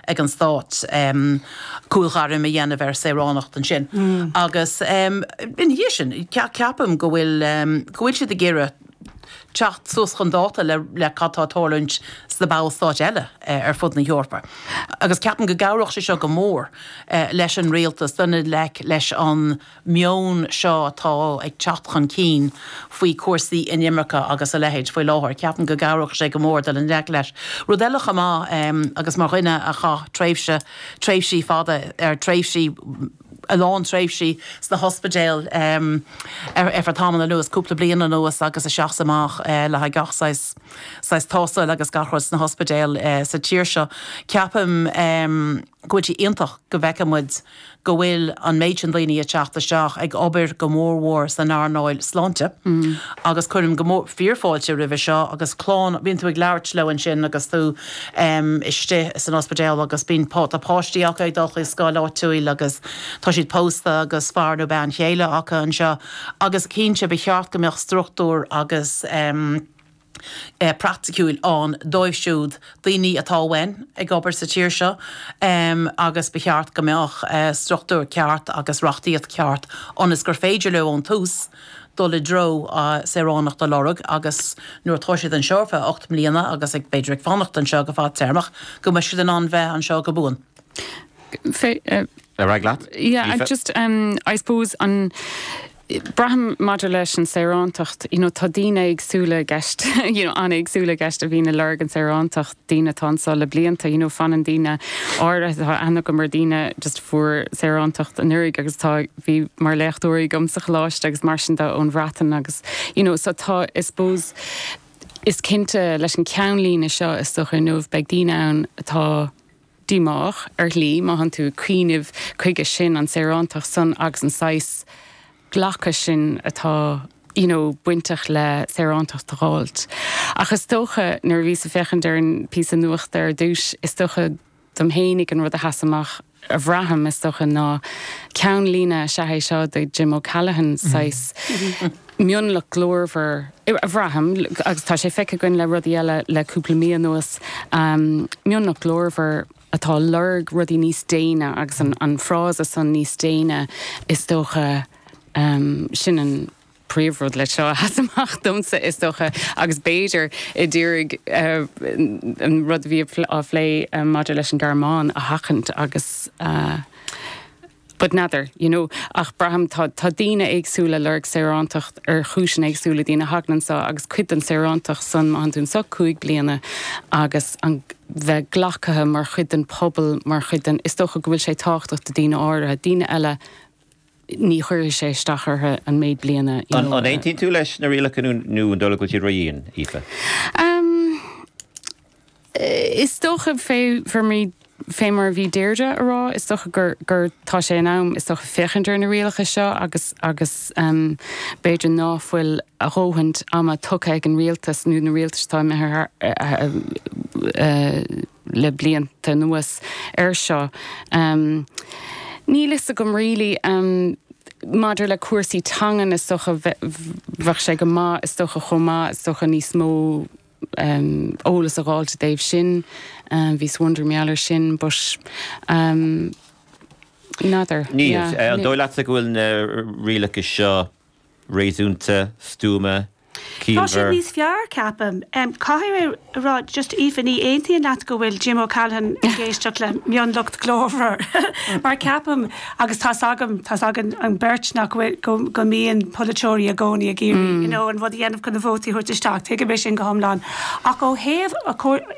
ag an Stát cúlghairm a dhéanamh ar saoránacht ansin agus ina dhiaidh sin ceapaim go bhfuil siad ag iarraidh teacht suas chun dáta le cad tá ag tarlúint sna ballstáit eile ar fud na hEorpa agus ceapaim go gcabhródh sé seo go mór leis an Rialtas dul i ngleic leis an meon seo atá ag teacht chun cinn faoi chúrsaí inimirce agus a leithéid faoi láthair. Ceapaim go gcabhródh sé go mór dul i ngleic leis. Rud eile chomh maith agus mar dhuine a chaith tréimhse, tréimhsí fada, er tréimhsí, a lán tréimhsí sna hospidéil ar feadh tamaill anuas, cúpla bliain anuas agus isteach is amach le haghaidh gach saghas, saghas tástáil agus gach rud, sna hospidéil sa tír seo, ceapaim go bhfuil sé iontach go bhfeice muid, go bhfuil an méid sin daoine ag teacht isteach ag obair go mór mhór san earnáil sláinte agus cuirim go mór, fíor fáilte roimhe seo agus clann, bíonn tú ag labhairt leo ansin agus tú istigh san ospidéal agus bíonn tá páistí acu ag dul chuig scoil áitiúil agus tá siad pósta agus fear nó bean chéile acu anseo agus cinnte ba cheart go mbeadh struchtúr agus. praiticiúil ann dóibh siúd, daoine atá uainn, ag obair sa tír seo agus ba cheart go mbeadh struchtúr ceart agus reachtaíocht cheart ionas gur féidir leo ón tús dul i dtreo saoránacht a lorg agus nuair atá siad anseo ar feadh ocht mbliana agus ag b'fhéidir ag fanacht anseo go fadtéarmach go mbeidh siad in ann bheith anseo go buan. Ar aghaidh leat. Yeah, I just um I suppose an Braithim maidir leis an saorántacht, you know tá daoine éagsúla i gceist, you know an-éagsúla i gceist a bhíonn ag lorg an saorántacht, daoine atá anseo le blianta, you know fanann daoine áirithe, tá aithne agam ar daoine just a fuair saorántacht anuraidh agus tá, bhí mar léachtóirí agam sa choláiste agus mar sin de ón Bhreatain agus you know so tá I suppose is cinnte leis an ceannlíne seo is dócha inniu beidh daoine ann atá díomách, ar shlí, má thánn tú ag cuimhneamh chuige sin, an tsaorántacht san agus an saghas glacadh sin atá you know bainteach le saorántacht a dh'fháilt. Ach is dócha, nuair a bhíos ag féachaint ar an bpíosa nuachta ar dtús, is dócha dom fhéinig an rud a sheas amach, a bhraithim, is dócha, ná ceannlíne, is ea é seo do Jim O'Callaghan, saghas, mionlach glórmhar, a bhraithim, agus tá sé feicthe againn le rudaí eile le cúpla mí anuas, mionlach glórmhar atá ag lorg rudaí níos déine agus an frása san níos déine, is dócha, sin an príomhrud leis seo a sheas amach domsa, is dócha, agus b'fhéidir i dteoiric an rud a bhí á phlé maidir leis an nGearmáin a sheachaint agus a. But n'fheadar, you know. Ach braithim, tá, tá daoine éagsúla ag lorg saorántacht ar chúiseanna éagsúla, daoine a thagann anseo agus cuid den saorántacht san, má thagann tú anseo cúig bliana agus an, bheith glacaithe mar chuid den pobal, mar chuid den, is dócha go bhfuil sé tábhachtach do daoine áirithe, daoine eile ní chuirfidh sé isteach orthu an méid bliana, you know. An, an aontaíonn tú leis na rialacha nó, nó an dóigh leat go bhfuil siad ró-dhian, Aoife? Ahm. Is dócha, fé mar a bhí Deirdre ag rá, is dócha gur gur tá sé in am, is dócha, féachaint ar na rialacha seo agus agus b'fhéidir ná fuil a dhóthain ama tugtha ag an Rialtas nó na Rialtais atá imithe le blianta anuas air seo. Níl fhios agam really. Maidir le cúrsaí teangan is dócha bheadh sé go maith is dócha chomh maith is dócha níos mó, eolas a fháil i dtaobh sin. Bheadh saghas bun-tuairim ar sin, but n'fheadar. Níl. An dóigh leatsa go bhfuil na rialacha seo réasúnta, stuama, ciallmhar? Tá siad níos fearr, ceapaim. Caithfidh mé a rá, just Aoife, ní aontaím leat go bhfuil Jim O'Callaghan ag éisteacht le mionlucht glórmhar, mar ceapaim, agus tá's agam, tá's againn an beirt nach bhfuil, go, go mbíonn polaiteoirí i gcónaí ag iarraidh, you know, an rud a dhéanamh chun na vótaí a thabhairt isteach, tuigim é sin go hiomlán. Ach ó thaobh,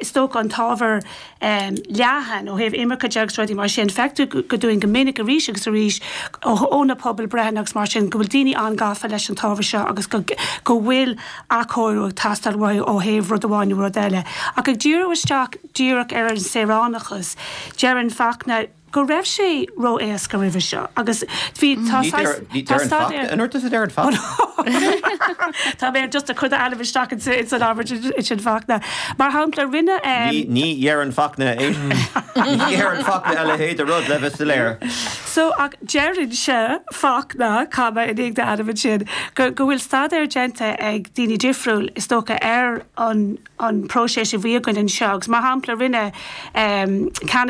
is dócha, an t-ábhar leathan, ó thaobh imirce de agus rudaí mar sin, feictear go dúinn go minic arís agus arís ó na pobalbhreitheanna agus mar sin go bhfuil daoine an-ghafa leis an t-ábhar seo agus go, go bhfuil athchóiriú ag teastáil uathu ó thaobh rud amháin nó rud eile. Ach ag díriú isteach díreach ar an saoránachas, deireann Fachtna, go raibh sé ró-éasca roimhe seo agus bhí, tá saghas, tá staidéar. An rud is a deireann Fachtna. Tá mé just ag cur d'ainm isteach ins an abairt sin Fachtna. Mar shampla, rinne. Ní dheireann Fachtna é. Ní dheireann Fachtna a leithéid de rud le bheith soiléir. So ach deireann sé, Fachtna, comma, i ndiaidh an ainm sin, go bhfuil staidéar déanta ag daoine difriúil is dócha ar an bpróiseas a bhí againn anseo agus mar shampla rinne Canada,